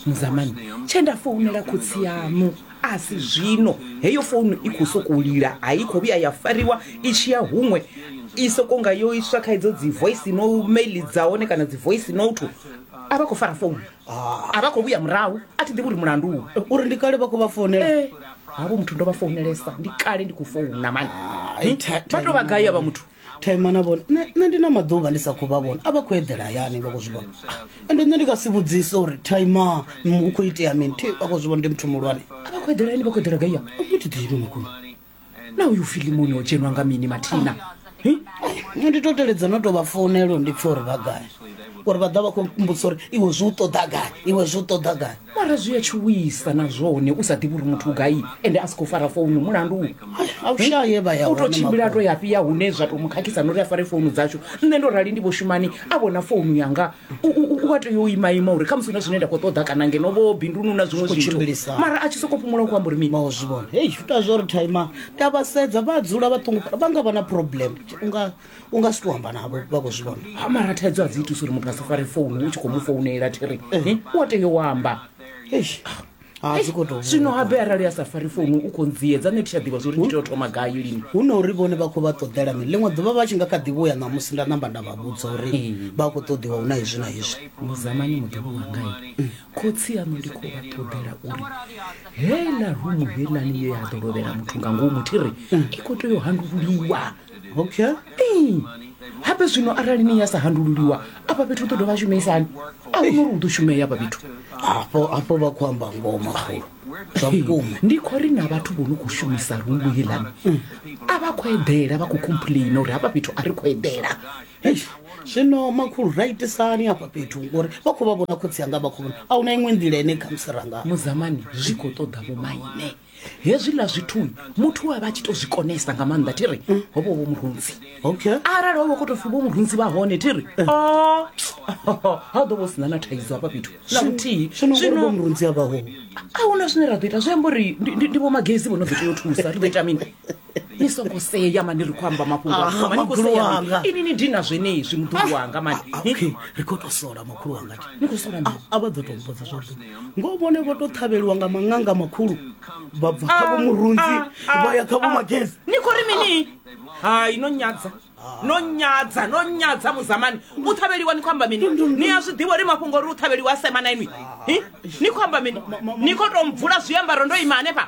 muzamani tshe nda founela khotsi yaṋu a si zwino heyo founu i khou sokou lila a i khou vhuya ya fariwa i tshi ya huṅwe i sokou nga yo iswa kha idzo dzi voice no mail dza hone kana dzi voice note a vha khou fara founu a vha khou vhuya murahu a thi ḓivhi uri mulandu uri ndi kale vha khou vha founela Eh, havho muthu ndo vha founelesa ndi kale ndi khou founa mani Ai, Hm? tha- vha tou vha gai avha muthu thema na vhone nṋe nṋe ndi na maḓuvha ndi sa khou vha vhona a vha khou eḓela hayani vha khou zwi vhona Ah, ende nṋe ndi nga si vhudzise uri thema hu khou itea mini thi vha khou zwi vhona ndi muthu muhulwane a vha khou eḓela hayani vha khou eḓela gaiya ni thi ḓivhi makhulu na uyu filimoni o dzhenwa nga mini mathina Hi? nṋe ndi to teledza no to vha founelo ndi pfhe uri vha gai uri vha ḓa vha khou mbudzisa uri iwe zwi u ṱoḓa gai iwe zwi u ṱoḓa gai mara zwi a tshuwisa na zwone u sa ḓivhi uri muthu gai ende a si khou fara founu mulandu a u shaye vha ya u tou tshimbila a to ya fhiya hune zwa tou mu khakhisa na uri a fare founu dzashu nṋe ndo rali ndi vho shumani a vhona founu yanga u a tea u ima ima uri khamusi na zwine nda khou ṱoḓa kana ngeno vho bindunu na zwiṅwe zwithu mara a tshi sokou fhumula u khou amba uri mini vha zwi vhona hei zwi ita zwo ri thaima ndi a vha sedza vha dzula vha ṱungufhala vha nga vha na problem unga u nga si to amba navho vha khou zwi vhona ha mara thaidzo a dzi itusa uri muthu a si fare founu u tshi khou mu founela thiri Eh, u a tea u amba eish ha dzi khou tou zwino habe arali a sa fari founu u khou ndziedza nṋe thi tsha ḓivha zwori ndi tea u thoma gai lini hu na uri vhone vha khou vha ṱoḓela mini ḽiṅwe ḓuvha vha tshi nga kha ḓi vhuya ṋamusi nda namba nda vha vhudza uri Ee. vha khou ṱoḓiwa hu na hezwi na hezwi muzamani muḓolo wangai khotsi yaṋu ndi khou vha ṱoḓela uri heiḽa rumu heilani ye ya ḓo lovhela muthu nga ngomu thi ri i khou tea u handululiwa okay ee hape zwino arali ni ya sa handululiwa afha fhethu u ḓo dovha a shumeisani a huna uri u ḓo shumea afha fhethu hafho hafho vha khou amba ngoho makhulu zwa vhukuma ndi khou ri na vhathu vho no khou shumisa rungu heḽani a vha khou eḓela vha khou complaina uri hafha fhethu a ri khou eḓela Eish, zwino makhulu ra itisani hafha fhethu ngori vha khou vha vhona khotsi anga vha khou vhona a huna iṅwe nḓila ine khamusi ranga muzamani zwi khou ṱoḓa vhomaine hezwiḽa zwithu muthu a vha tshi to zwi konesa nga maanḓa thi ri ho vha vho murunzi okay arali ho vha kho to pfi vho murunzi vha hone thi ri o ha ḓo vho sina na thaidzo hafha fhethu na vhuthihi zwino ngori vho murunzi a vha ho a huna zwine ra ḓo ita zwi amba uri ndi- ndi ndi vho magezi vho no ḓo tea u thusa ri ḓo ita mini ni songo sea mani ri khou amba mafhungo Ah, asomani makhulu kusea wanga. ini ni dina zwenezwi muḓulu wanga mani Ah, Ni- okay ri khou tou sola makhulu wanga ti ni khou sola mini? a vha ḓo tou mbudza zwavhuḓi ngo vhone vho tou ṱhavheliwa nga maṅanga makhulu vha bva kha vho murunzi vha ya kha vho magezi ni khou ri mini hai no nyadza no nyadza no nyadza muzamani u ṱhavheliwa ni khou amba mini ni a zwi ḓivha uri mafhungo uri u ṱhavheliwa a sema na inwi Hi? ni khou amba mini ni khou tou mvula zwiambaro ndo ima hanefha